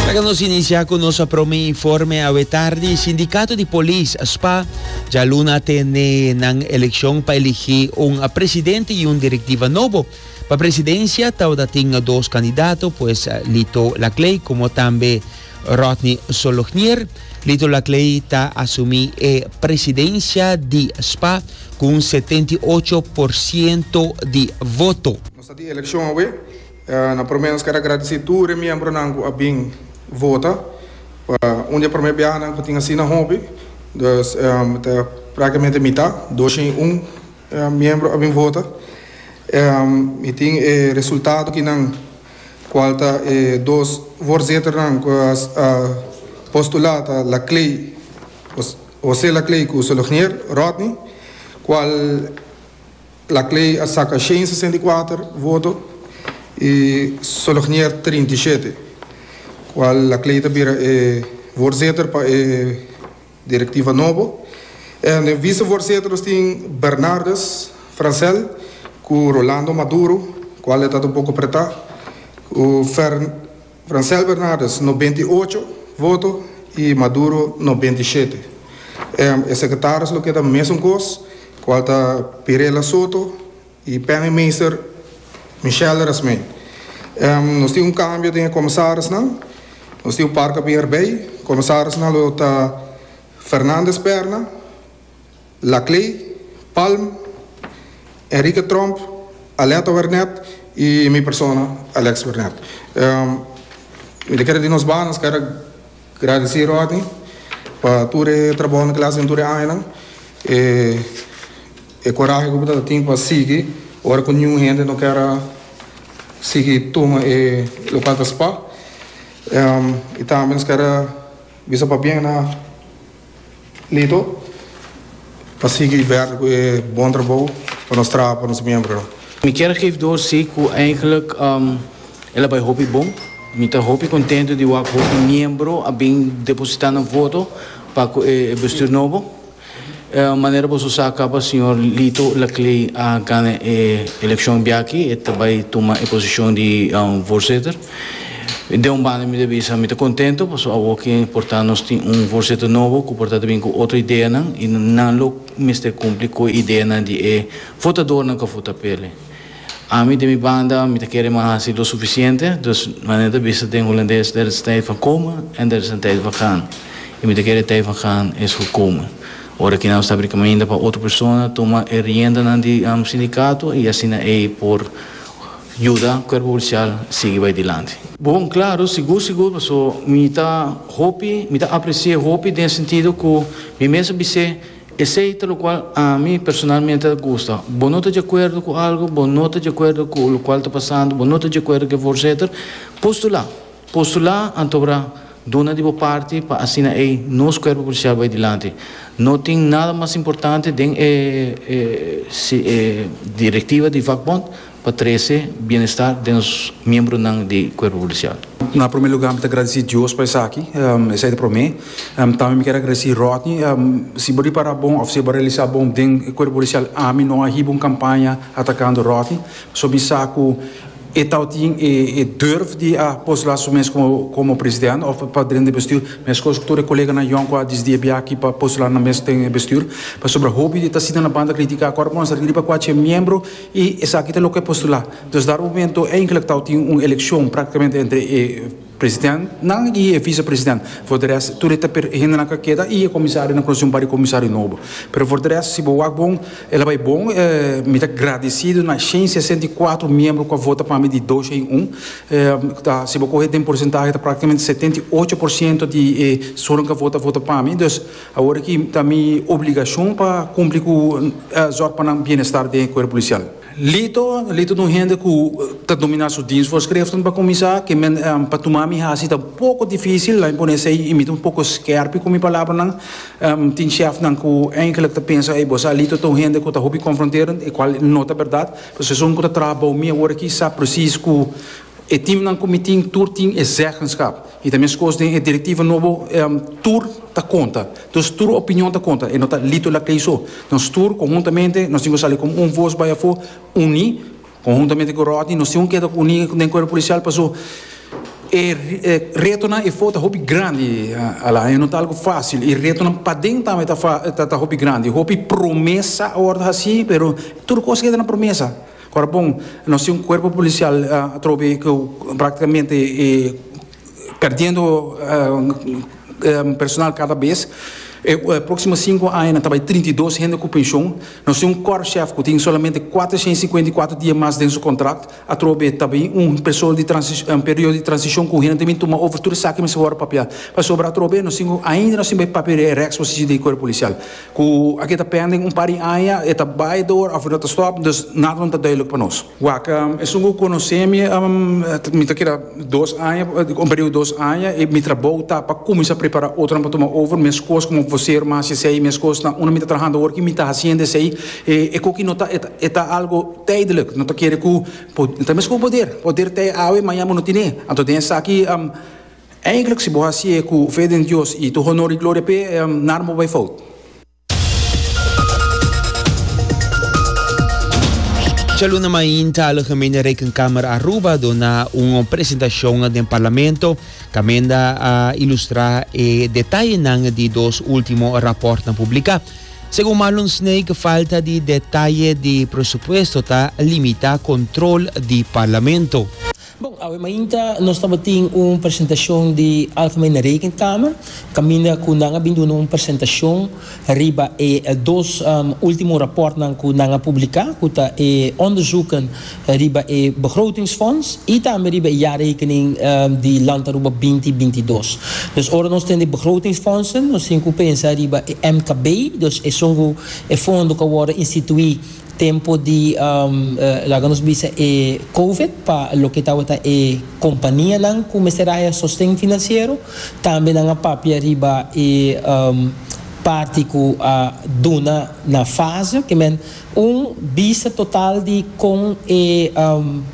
Laga nos inicia cu nos prome informe. Awe tardi Sindicato di Polis, spa, djaluna a tene nan eleccion pa eligi un presidente y un directiva nobo. Pa presidencia tawata tin dos candidato pues Lito Laclay como tambe Rodney Solognier. Lito Laclay ta asumi e presidencia di spa cu un setenta y ocho por ciento di voto. Nos ta tin eleccion awe Na prome nos ker a gradisí tur e miembronan ku a bin vota. Pa un di e prome biahanan ku tin asina hopi, dus ta praktikamente mitá, dosha i un miembro a bin vota. Mi tin e resultado akinan kual ta e dos voorzitternan ku a postulá ta Laclay, José Laclay ku Solognier Rodney, kual. Black Ley a saka shen sesenta i kuater voto i Solognier trinta i shete, kual Black Ley ta bira e voorzitter pa e directiva nobo. En den vicevoorzitter nos tin Bernardus Francel cu Rolando Maduro, cual e ta ta un poco apretá, cu Fer. Francel Bernardes nobenta i ocho voto i Maduro nobenta i shete. E sekretaris lo keda mesun kos kual ta Pirela Soto i Penningmeester Michelle Resmee. Nos tin un kambio den e komisarisnan. Nos tin un par ku a bin erbei. Komisarisnan lo ta Fernandes Perna. Laclay, Palm, Enrique Tromp, Aletta Wernet y mi persona Alex Wernet. Mi ta kere di nos banan skada gradeci Rodney pa tur e trabahonan kul a hasi den tur e añanan, e corahe ku bo ta tin pa sigui ora ku niun hende no kere sigui tuma e local ta spa y tambe nos kere bisa pabien na. Lito pa sigui bèrt ku e bon trabou pa nos traha pa nos miembronan. Mi kier gif dor si ku eindelijk el a bai hopi bon. Mi ta hopi kontentu di wak hopi miembro a bin depositá nan voto pa ku e bestuur nobo. Manera boso sa kaba señor Lito Laclée a gana e elekshon biaki, e ta bai tuma e posishon di voorzitter. Den un banda mi ta bisa mi ta contento paso awo ki porta nos tin un voorzitter nobo cu por ta ta bin cu otro ideanan y nan lo mester cumpli cu e ideanan di e votadornan cu a vota pe el. Ami den mi banda mi ta kere mi a haci lo suficiente, dus manera ta bisa den Holandes der is een tijd van komen en der is een tijd van gaan y mi ta kere e tijd van gaan es gekomen. Ora ki nan lo sabri caminda pa otro persona tuma e riendanan di nam sindicato y asina ey por Yuda cuerpo policial sigui bay dilanti. Bon claro sigur sigur paso mi ta hopi mi ta aprecie hopi den e sentido cu mi mester bis'e esey ta locual ami personalmente ta gusta bo no ta djecuerdo cu algo bo no ta djecuerdo cu locual ta pasando bo no ta djecuerdo ke for seter postula postula anto abra duna di bo parti pa asina ey nos cuerpo policial bay dilanti no tin nada mas importante den e directiva di vakbond. pa trece bienestar den nos miembronan di cuerpo policial. Na prome luga mi ta agradeci Dios pa esaki, esai ta prome. Tambe mi kier agradeci Rodney. Si bo ripara bon of si e bo realisa bon den e cuerpo policial ami no a hiba un campaña atacando Rodney, pasobra mi sa cu e tabatin e durf di a pos la su mes como president of pa dren di e bestuur, mescos cu tur e coleganan yòn cu a disdi a bia aki pa postular nan mes den e bestuur, pasobra hopi ta sinta na banda critica cu ora bo a sa riba cu a ch'e miembro. I esaki ta loke postulá. Dus dar momento e inclectao tin un eleccion practicamente entre e president nan y e vice president. For de rest tur e ta per e hende nan ka keda y e comisario nan conoci un par di comisario nobo. Pero for de rest si bo wak bon e la bay bon. Mi ta gradecido na shen sesenta y cuatro miembro cu a vota pa mi di dos shen un. Ta si bo coge den porcentahe ta practicamente setenta y ocho por ciento di e sunan cu a vota vota pa mi. Awor aki ta mi obligacion pa cumpli cu zorg pa nan bienestar den e cuerpo policial. Lito, Lito ta un hende cu ta domina su diensvoorschriften pa cuminsa, ke men pa tuma mi haci ta un poco dificil, lami pone esey y mi ta un poco skerpi cu mi palabranan. Tin chefnan cu eigenlijk ta pensa, ey bo sa Lito ta un hende cu ta hopi confronterend, e cual no ta berdad, pasobra esun cu ta traha bao mi awor aki sa precies cu, E teamnan ku mi tin tur tin e zeggenskap i ta meskos den e direktiva nobo tur ta konta. Dus tur opinion ta konta, e no ta lito la kei so. Nos tur konhuntamente nos tin ku sali komo un vos bai afó uní. Konhuntamente ku Rodney nos tin ku keda uní den Kuerpo Polisial pasó e retonan e for ta hopi grandi Alain. E no ta algu fásil i retonan paden tambe ta hopi grandi. Hopi promesa a wòrdu hasí pero tur kos keda na promesa. Ora bon, nos tin un cuerpo policial atrobe cu practicamente e perdiendo personal cada bes. E proximo cinco aña nan ta bay trinta i dos hende cu pension. Nos tin un Korpschef cu tin solamente cuatrocientos y cincuenta y cuatro dia mas den su contract. Atrobe ta bay un persoal di transici-un periodo di transicion cu hende ta bay tuma over tur esaki mesora papia. Pasobra atrobe nos tin ainda nos tin bay papia di e reksposicion di e cuerpo policial. Ku aki ta pende un par di aña, e ta bai door of e no ta stop, dus nada no ta duidelijk pa nos. Wak, Esun ku konosé mi, mi ta keda dos aña, un periudo dos aña, i mi trabou ta pa kuminsá prepará otronan pa tuma over, meskos komo vosero mas esei, meskos na unda mi ta trahando awor, i mi ta hasiendo esei, e koki no ta, e ta algo tijdelijk, no ta kere ku, ta meskos poder, poder tij awe, maña bo no tine, anto den esaki, Eindelijk si bo hacié cu fe den Dios y to honor y gloria p'e, nada bo bai fout. Djaluna mainta a lo Gemeente Rekenkamer Aruba dona un presentacion den Parlamento caminda a ilustra e detayenan di dos ultimo raportnan publica. Segun Marlon Snake falta di detaye di presupuesto ta limita control di Parlamento. Bon, awe mainta nos tabatin un presentacion di Alfama i na Rekenkamer, caminda cu nan a bin duna un presentacion riba e dos ultimo raportnan cu nan a publica, cu ta e onderzoeken riba e Begrotingsfonds i tambe riba e jaarrekening di Landaruba binti binti dos. Dus ora nos tende Begrotingsfondsen, nos tin cu pensa riba e MKB, dus esun cu e fondo cu a worde institui Tempo di, laga nos bisa e Covid, pa loke tabata e kompanianan ku mester haya sosten finansiero. Tambe nan a papia riba e parti ku a duna na fase ke men un bisa total di kon e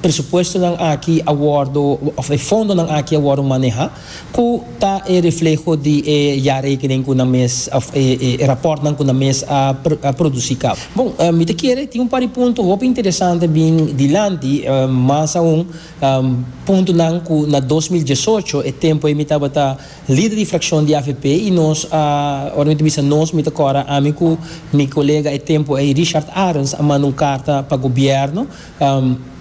presupuestonan aki a wòrdu, òf e fondonan aki a wòrdu maneha. Cu ta e refleho di e jaarrekening cu nan mes of e rapportnan cu nan mes a produci cabo? Bon, mi ta kere tin un par di punto hopi interesante bin dilanti, mas aun puntonan cu na dos mil diesocho, e tempo ei mi tabata lider di fraccion di avp y nos a, ora mi ta bisa nos mi ta cora ami cu mi colega e tempo ei Richard Arens a manda un carta pa gobierno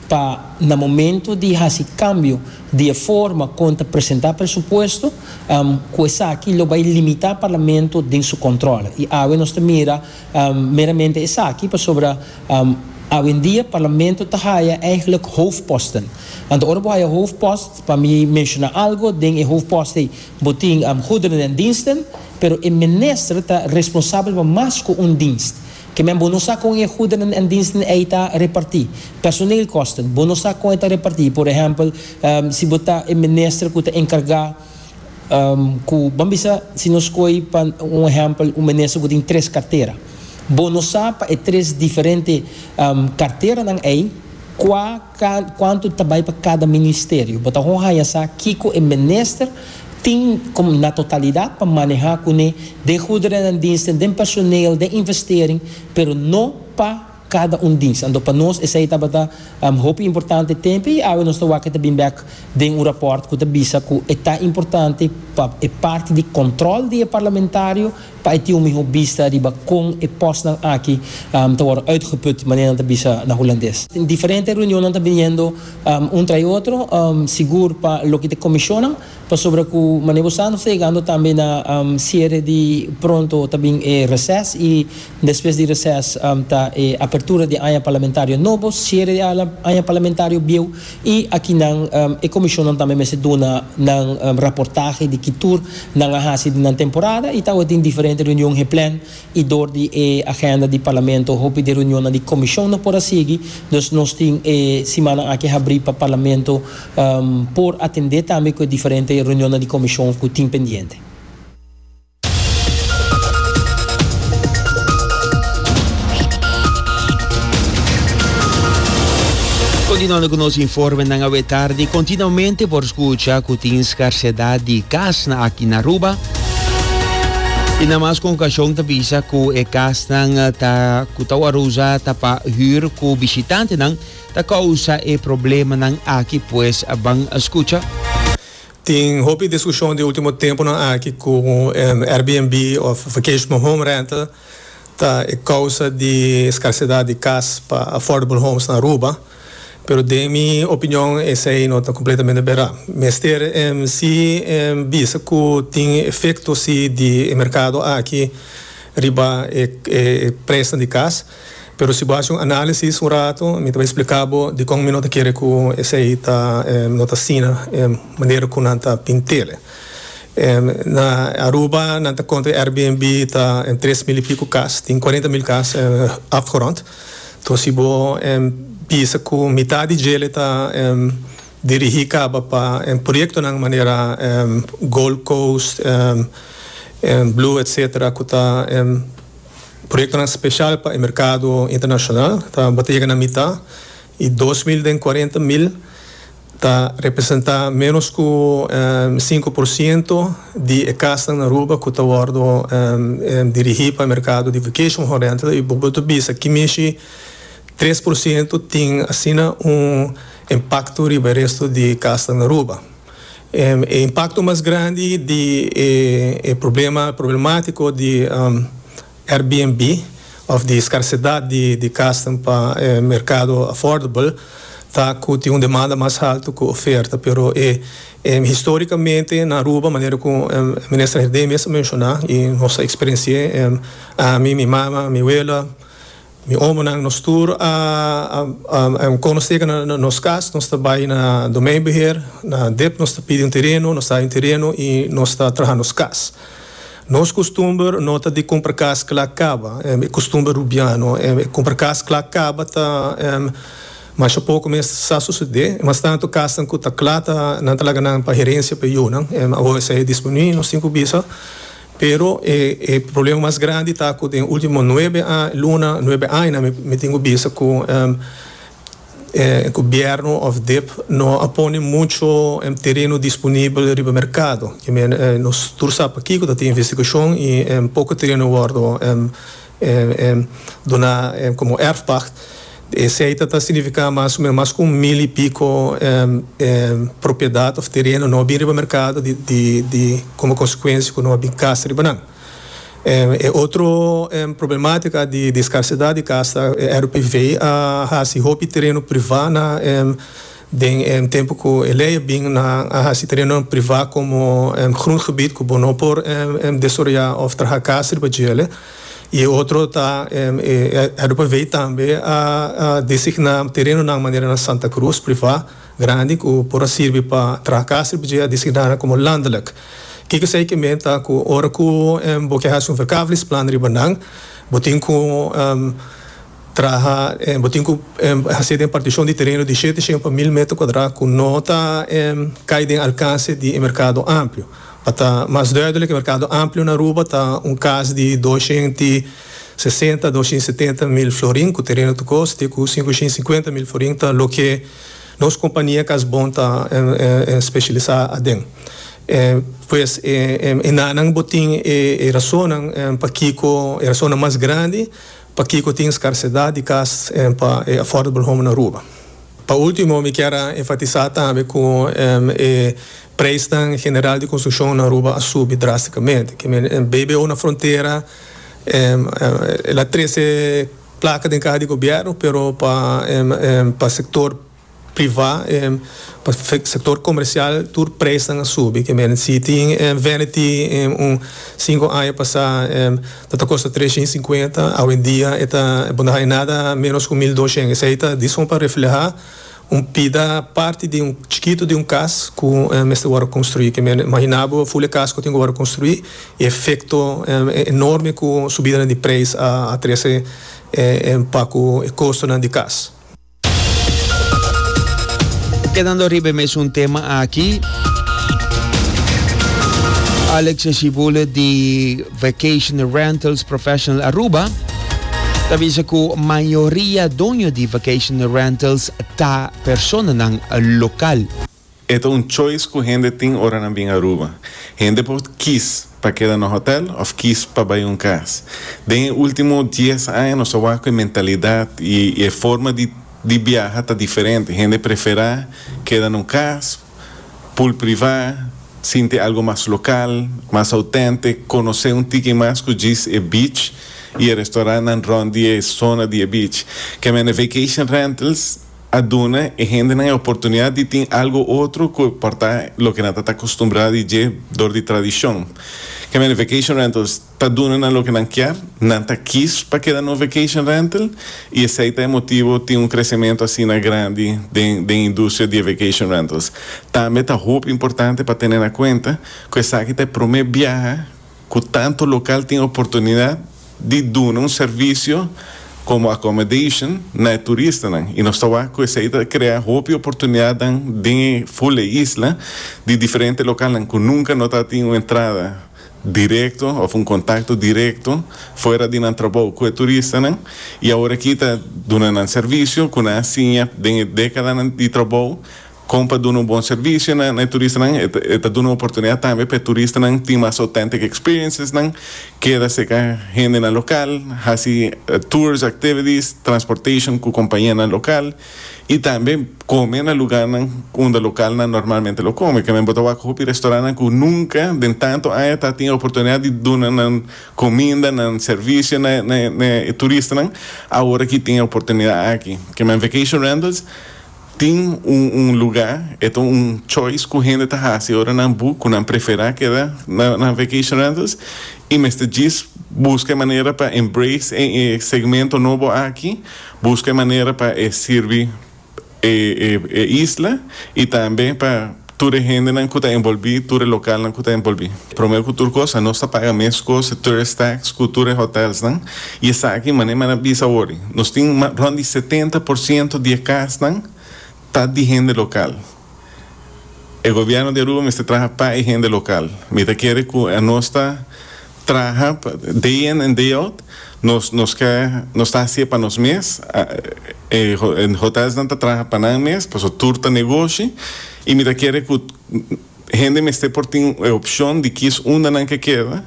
pa na momento di haci cambio di e forma kon ta presentá presupuesto, ku esaki lo bai limitá Parlamento den su kòntròl. I awe nos ta mira meramente esaki pasobra awendia Parlamento ta haya eigentlik hoofdposten. Anto ora bo haya hoofdpost, pa mi menshoná algu, den e hoofdpost ei bo tin goederen en diensten, pero e minister ta responsabel pa mas ku un dienst. Ke men bo no sa kon e goederen en diensten ei ta repartí. Personeelkosten, bo no sa kon e ta repartí. Por ehèmpel, si bo ta e minister ku ta enkargá ku, ban bisa si nos koe pa un ehèmpel un minister ku tin tres kartera. Bo no sa pa e tres diferente karteranan ei kua kuantu ta bai pa kada ministerio. Bo ta hopi haña sa kiko e minister Tin com na totalidad pa maneha cune den goederennan diensten, den personeel, den investering, pero no pa cada un dienst. Anto pa nos esey tabata hopi importante tempe y awe nos ta wak e ta bin bek den un rapport cu ta bisa cu e ta importante pa e parti di control di e parlamentario, pa e tin un mihó bista riba kon e pòstnan aki ta wòrdu uitgeput, manera nan ta bisa na hulandes. Diferente reunionnan ta biniendo un trai otro, sigur pa loke ta e komishonnan, pasobra ku manera bo sa nos ta yegando tambe na siere di pronto ta bin e reses i despues di reses ta e apertura di e aña parlamentario nobo, siere di e aña parlamentario bieu. I aki nan e komishonnan tambe mester duna nan raportahe di ki tur nan a hasi den nan temporada i tawes den diferente reunion geplan i dor di e agenda di Parlamento hopi di reunionnan di komishon no por a sigui. Dus nos tin e simannan aki habrí pa Parlamento por atendé tambe ku e diferente reunionnan di komishon ku tin pendiente. Continuando cu nos informenan awe tardi, continuamente por scucha cu tin scarcedad di casnan aki na Aruba. Y na mas con occasion ta bisa cu e casnan eh, ta, cu ta wor usa ta pa huur cu bishitante nan, ta causa e problemanan aki pues ban scucha. Tin hopi diskushon di ultimo tempunan aki ku Airbnb òf vacation home rental ta e kousa di skarsidat di kas pa affordable homes na Aruba, pero den mi opinion esei no ta kompletamente berá. Mester si bisa ku tin efekto si di e merkado aki riba e presnan di kas. Pero si bo haci un análisis un rato, mi ta bai splica bo dicon mi no ta kere cu esey ta, no ta asina, manera cu nan ta tin tele. Na Aruba nan ta conta Airbnb ta tres mil y pico cas, tin cuarenta mil cas afgerond. Enton si bo bisa cu mitad di djele ta dirigi caba pa proyectonan manera Gold Coast, Blue etc. Cu ta. Proyektonan speshal pa e merkado internashonal ta bo ta yega na mitá i dos mil den kuarenta mil ta representá ménos ku sinku por siento di e kasnan na Aruba ku ta wòrdu dirigí pa e merkado di vacation home rental i bo por ta bisa ki mishi tres por siento tin asina un impakto riba e resto di kasnan na Aruba. E impakto mas grandi di e problema problematiko di Airbnb òf di skarsedat di kasnan pa e merkado affordable ta ku tin un demanda mas haltu ku oferta pero e historikamente na Aruba manera ku Minister Herdé mes a menshoná i nos a eksperensi'é ami mi mama mi wela Mi omonan, nos tur a kono seka na nos kas. Nos ta bai na domeinbeheer, na dep, nos ta pidi un tereno, nos ta haña un tereno i nos ta traha nos kas. Nos kustumber no ta di kumpra kas kla kaba, e kustumber rubiano. E kumpra kas kla kaba ta masha poko mes sa susede. Mas tantu kasnan ku ta kla ta nan ta laga nan pa herensia pa e yunan. Awo esei a disminuí, nos tin ku bisa. Pero e e problema mas grandi ta cu den e ultimo nuebe luna, nuebe aña mi mi tin cu bisa cu e gobierno of dip no a pone mucho tereno disponibel riba mercado. Nos tur sa pakico ta tin investigacion y poco tereno a wordo duna komo erfpacht. E seita ta signifiká mas o menos mas ku un mil i piko propiedat òf tereno nò bin riba merkado di komo konsekuensia ku nò bin kas riba nan. E otro problematika di skarsidat di kas ta RPV a hasi hopi tereno privá na Den e tempu ku e lei a bin nan a hasi terenonan privá komo grondgebied ku bo no por desaroyá òf traha kas riba djele i e otro ta e Herberveen tambe a designá terenonan manera na Santa Cruz privá grandi ku por a sirbi pa traha kas riba dje a designá nan komo landelijk. Ke ku esei ke meen ta ku ora ku bo ke hasi un verkavelingsplan riba nan bo tin ku Traha bo tin cu haci den particion di tereno di shete shen pa mil meter cuadra cu no ta cay den alcance di e mercado amplio. Pa ta mas duidelijk e mercado amplio na Aruba ta un cas di dos shen ti sesenta a dos shen setenta mil florin cu tereno ta cos te cu cinco shen cincuenta mil florin ta loke nos compania cas bon ta specialisa aden. Pues e nanan bo tin e razonnan pakico e razonnan mas grandi. Pakico tin scarcedad di cas en pa e affordable home na Aruba? Pa ultimo mi kier a enfatisa tambe cu e prijsnan general di construccion na Aruba a subi drasticamente. Kimen e BBO na frontera el a trece placa den caha di gobierno pero pa sector. privá, pa sektor komersial tur presnan a subi. Ke mene si tin vanity un sinku aña pasá lo ta kosta tres shen i sinkuenta awendia e ta bo no haña nada ménos ku mil dos shen. Esei ta dison pa reflehá un pida parti di un chikitu di un kas ku mester wòrdu konstruí. Ke mene imaginá bo ful e kas ku tin ku wòrdu konstruí i efekto enorme ku subidanan di preis a trese pa ku e kostonan di kas. Kedando riba e mesun tema aki, Alex Eshibulet di Vacation Rentals Professional Aruba ta bisa ku mayoria doño di vacation rentals ta personanan lokal. E ta un choice ku hende tin ora nan bin Aruba. Hende por kis pa keda na hotel òf kis pa bai un kas. Den e último dies aña nos a wak ku e mentalidat i e forma di di biaha ta diferente. Hende preferá keda na un kas pul privá, sinti algu mas lokal, mas autèntik, konosé un tiki mas ku djis e beach i e restorantnan rònt di e sona di e beach. Kèmènde Vacation Rentals. a duna e hendenan e oportunidat di tin algu otro ku por ta loke nan ta ta akustumbrá di dje dor di tradishon. Kèmen e vacation rentals ta duna nan loke nan kier, nan ta kis pa keda na un vacation rental i esei ta e motibu tin un kresementu asina grandi den den e industria di e vacation rentals. Tambe ta hopi importante pa tene na kuenta ku esaki ta e promé biaha, Ku tantu lokal tin oportunidat di duna un servisio komo accommodation na e turistanan i nos ta wak ku esei ta krea hopi oportunidatnan den e ful e isla di diferente lokalnan ku nunka no ta tin un entrada direkto òf un kontakto direkto fuera di nan trabou ku e turistanan i awor aki ta duna nan servisio ku nan a siña den e dekadanan di trabou. Kon pa duna un bon servisio na e turistanan? E ta duna oportunidad tambe pa e turistanan tin mas authentic experiencesnan, keda cerca hendenan local, haci tours, activities, transportation cu compañianan local y tambe come na lugarnan unda localnan normalmente lo come. Kende bo ta wak hopi restaurantnan cu nunca den tanto aña ta tin e oportunidad di duna nan cominda, nan servisio na e turistanan, aworakitin e oportunidad aki. Kende bo en Vacation Rentals. Tin un un lugá, e ta un choice ku hende ta hasi ora nan bu ku nan preferá keda na nan vacation rentals i mester djis buska e manera pa embrace e e segmento nobo aki, buska e manera pa e sirbi e e e isla i tambe pa. Tur e hendenan ku ta envolbí, tur e lokalnan ku ta envolbí. Promé ku tur kos, a nos ta paga mes kos e tourist tax ku tur e hotelsnan, i esaki manera mi a na bisa wòrdi, nos tin rònt di setenta por siento di e kasnan ta di hende lokal. E gobièrnu di Aruba mester traha pa e hende lokal. Mi ta kere ku a nos ta. Traha day in and day out, nos nos ke nos ta haci'e pa nos mes, e hotelsnan ta traha pa nan mes, paso tur ta negoshi y mi ta kere cu hende mester por tin e opcion di kis unda nan ke keda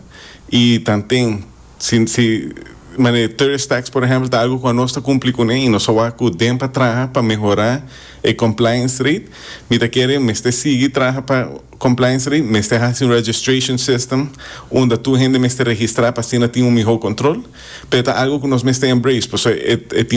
y tanten si si mane tourist tax por ehempel ta algo cu anos ta cumpli cu ne y nos a wak cu den pa traha pa mehora e compliance rate, mi ta kere mester sigui traha pa Compliance ri mester haci un registration system unda tur hende mester registra pa asina tin un miho control, pero e ta algo cu nos mester embrace, pasobra e tin.